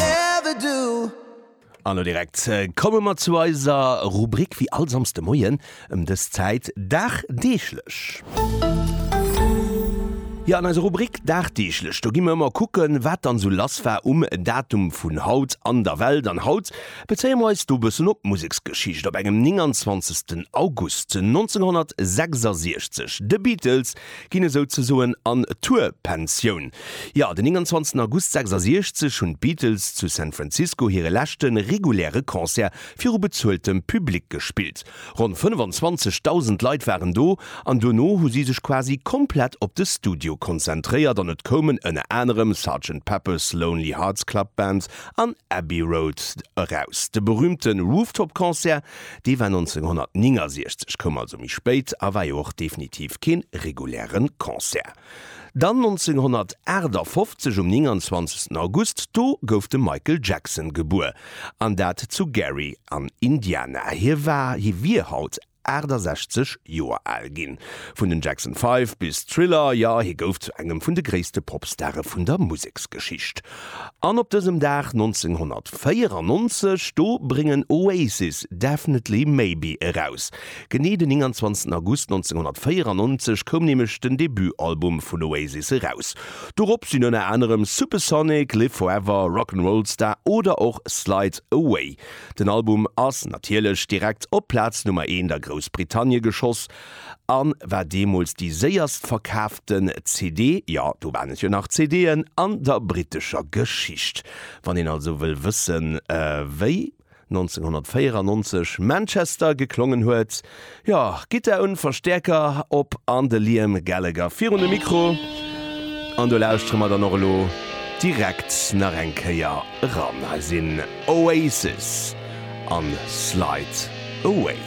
ever do. An lo direkt komme mer zu eiser Rubrik, wéi all Samsde Moien ëm dës Zäit, Dagdeeglech. Jo, an eiser Rubrik Dagdeeglech, do gi mer ëmmer kucken, wat dann esou lass war um Datum vun haut an der Welt. An haut bezéie mer eis do e bëssen op d'Museksgeschicht. Op engem 29. August 1966, The Beatles ginn esou ze soen an Tour-Pensioun. Jo, den 29 August 66 hunn d'Beatles zu San Francisco hire leschte reguläre Concert viru bezueltem Public gespillt. Ronn 25.000 Leit waren do an dono hu si sech quasi komplett op de Studio konzentréiert an et koumen ënner anerem Sergeant Pepper's Lonely Hearts Club Band an Abbey Road eraus. De berüümte Rooftop-Concert Dee war 1969, koum also méi spéit a war jo och definitiv kee reguläre Concert. Dann 1958, um 29 August, do gouf de Michael Jackson gebuer, an dat zu Gary an Indiana. Hie war, hie wier haut 68 Joer al ginn. Vun den Jackson Five bis Thriller, jo, hie gouf zu engem vun de gréisste Popstare vun der Museksgeschicht. An op dësem Dag 1994, do bréngen Oasis Definitely Maybe eraus. Genee den 29 August 1994 koum nämlech den Debutalbum vun Oasis eraus. Dorop sinn ënner anerem Supersonic, Live Forever, Rock 'n' Roll Star oder och Slide Away. Den Album ass natierlech direkt op Plaz Nummer Eent a Groussbritannie geschoss. an war deemools déi séierst verkaaften CD, jo do waren et jo nach CD'en, an der brittescher Geschicht. Wann een also wëll wëssen wéi 1994 Manchester geklongen huet, jo Gittar un, Verstäerker op an de Liam Gallagher virun de Mikro an do lauschtere mer dann och elo direkt nach eng Kéier eran. Hei sinn Oasis an Slide Away.